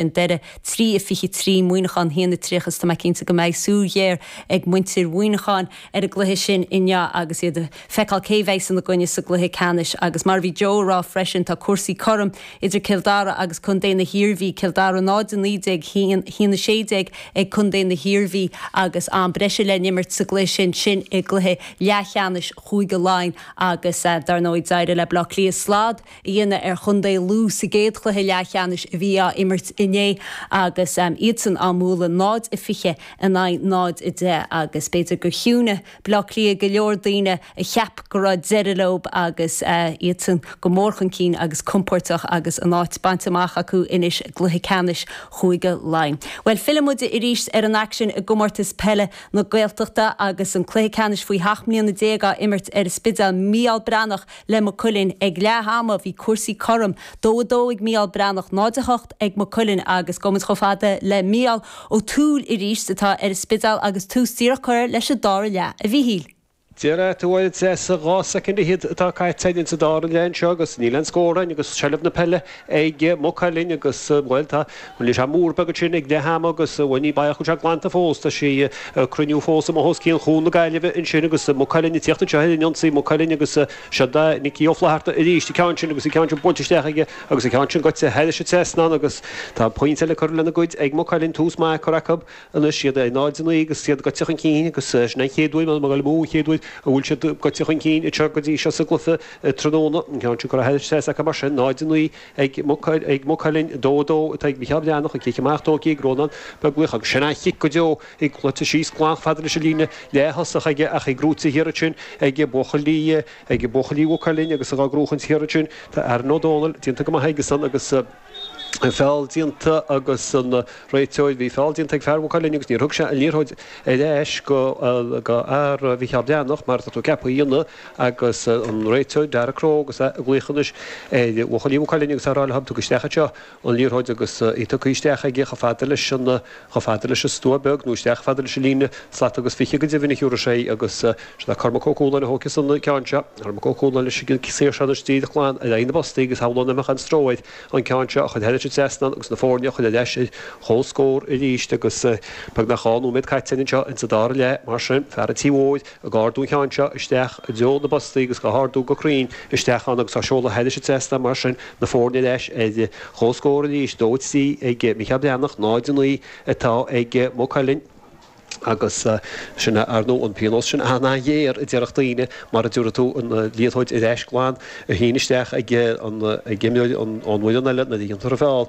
i ndeireadh, 3 a 23 Muineachán 1 a 30 Is tá mé cinnte go mbeidh súil ghéar ag muintir Mhuineacháin ar an gcluiche sin inniu agus iad ag feiceáil cé bheas ina gcoinne sa gcluiche ceannais agus mar a bhí Joe ag rá freisin tá cúrsaí cothrom idir Cill Dara agus Co na hIarmhí, Cill Dara 0 a 19, 1 a 16 ag Co na hIarmhí agus am breise le n-imirt sa gcluiche sin sin i gcluiche leathcheannais Chúige Laighean agus dar ndóigh d'éirigh le Baile Átha Cliath slad a dhéanamh ar chontae Lú sa gcéad chluiche leathcheannais a bhí á imirt inné agus iadsan á mbualadh 0 a 20 in aghaidh 0 a 10 agus b'fhéidir gur chiúnaigh Baile Átha Cliath go leor daoine a cheap go raibh deireadh leo agus iadsan go mór chun cinn agus compóirteach agus a n-áit bainte amach acu anois i gcluiche ceannais Chúige Laighean. Bhuel fillfidh muid arís ar an aicsean i gComórtas Peile na Gaeltachta agus an cluiche ceannais faoi sheacht mbliana déag á imirt ar an Spidéal. Mícheál Breathnach. le Maigh Cuilinn ag leath ama, bhí cúrsaí cothrom, 2 a 2 ag Mícheál Breathnach, 0 a 8 ag Maigh Cuilinn agus gabhfaimid chomh fada le Mícheál Ó Tuathail arís, atá ar an Spidéal agus tús díreach curtha leis an dara leath a Mhíchíl. Deir Aodh Ó Dheas sa 12 soicind atá caite againn sa dara leath anseo agus níl aon scór againn agus seilbh na peile ag Maigh Cuilinn agus bhuel tá. Rinne sé múr beag ansin ag leath ama agus ní baileach go bhfuil sé glanta fós. Tá sí ag cruinniú fós amuigh os cionn Chuan na Gaillimhe ansin agus Maigh Cuilinn ag tíocht anseo ar an ionsaí. Maigh Cuilinn agus seod é Nioc Ó Flatharta arís, an ceann sin agus an ceann sin buailte isteach aige agus an ceann sin goite thairis an trasnán agus tá pointe le cur lena gcuid ag Maigh Cuilinn. Tús maith curtha acu. anois, iad 0 a 9 agus iad goite chun cinn agus sin an chéad uair, m'anam, agallamh, an chéad uair a bhfuil siad goite chun cinn anseo go dtí seo sa gcluiche tráthnóna. An ceann sin curtha thar an trasnán acu mar sin, 0 a 9 ag Maigh Cuilinn, 2 a 2 atá ag Micheál Breathnach, an cic amach tógtha ag Rónán Beaglaoich agus sin an chic go deo i gcluiche síos glan fada leis an líne leath-thosach aige ach í gnóite thiar ansin ag buachaillí Mhaigh Cuilinn agus á gnóchaint thiar ansin tá Aaron Ó Dónaill déanta go maith aige-san agus feall déanta agus an réiteoir, bhí feall déanta ag fear Mhaigh Cuilinn agus níor thug sé an liathróid ar ais go fhear Mhicheál Breathnach mar atá tú ceaptha a dhéanamh agus an réiteoir, Daragh Crowe, agus é ag glaoch anois ar bhuachaillí Mhaigh Cuilinn agus á rá leo, Tugaigí isteach anseo an liathróid agus í tugtha isteach aige chomh fada leis an chomh fada leis an stua beag, nó isteach chomh fada leis an líne slat agus fiche, go deimhin, í curtha síos agus sin é Cormac Ó Cualáin a thógfas an ceann seo, Cormac Ó Cualáin leis an saor sin díreach glan ar aghaidh na bpostaí agus shamhlóinn nach mbeadh aon stró air an ceann seo a chur thairis an trasnán agus na foirne a chur ar ais ar comhscór arís agus beag nach dhá nóiméad caite anseo sa dara leath, mar sin, fear an tí mhóir. Ag ardú an ceann seo isteach i dtreo na bpostaí agus á hardú go cruinn isteach ann agus á seoladh thairis an trasnán mar sin, na foirne ar ais ar comhscór arís, 2-3 ag Micheál Breathnach, 0-9 atá ag Maigh Cuilinn. Agus sin é ar ndóigh an pionós sin an-ghéar a déarfadh daoine, mara dtabharfaidh tú an liathróid ar ais glan, a shíneadh isteach ag imreoir ón bhfoireann eile nuair a dhéantar an feall.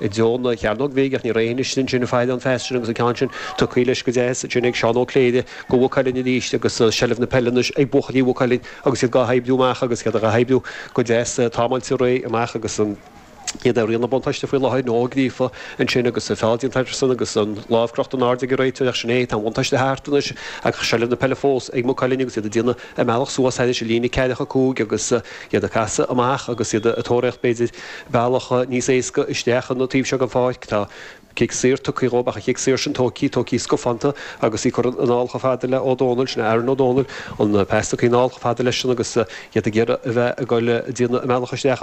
i dtreo na Cearnóige Bige, ach ní raibh aon fhios ansin faid an faster agus an ceann sin tugtha leis go deas ansin ag Seán Ó Cléire do Mhaigh Cuilinn arís agus seilbh na peile anois ag buachaillí Mhaigh Cuilinn agus iad gá hoibriú amach agus iad gá hoibriú go deas tamall de réidh amach agus iad ag rianú buntáiste faoi láthair nó Ó Gríofa ansin agus feall déanta acusan agus an lámh crochta in airde ag an réiteoir ach sin é tá an buntáiste thart anois ach seilbh na peile fós ag Maigh Cuilinn agus iad ag déanamh a mbealach suas thar an líne ceathrachadh cúig agus iad ag casadh amach agus iad ag tóraíocht b'fhéidir bealach níos éasca isteach an taobh seo den pháirc. Tá cic saor tugtha dhóibh ach an cic saor sin tógtha, tógtha scafánta agus í curtha anall chomh fada le Ó Dónaill. Sin é Aaron Ó Dónaill. An pas tugtha anall chomh fada leis sin agus iad ag iarraidh a bheith ag goil, déanamh a mbealach isteach an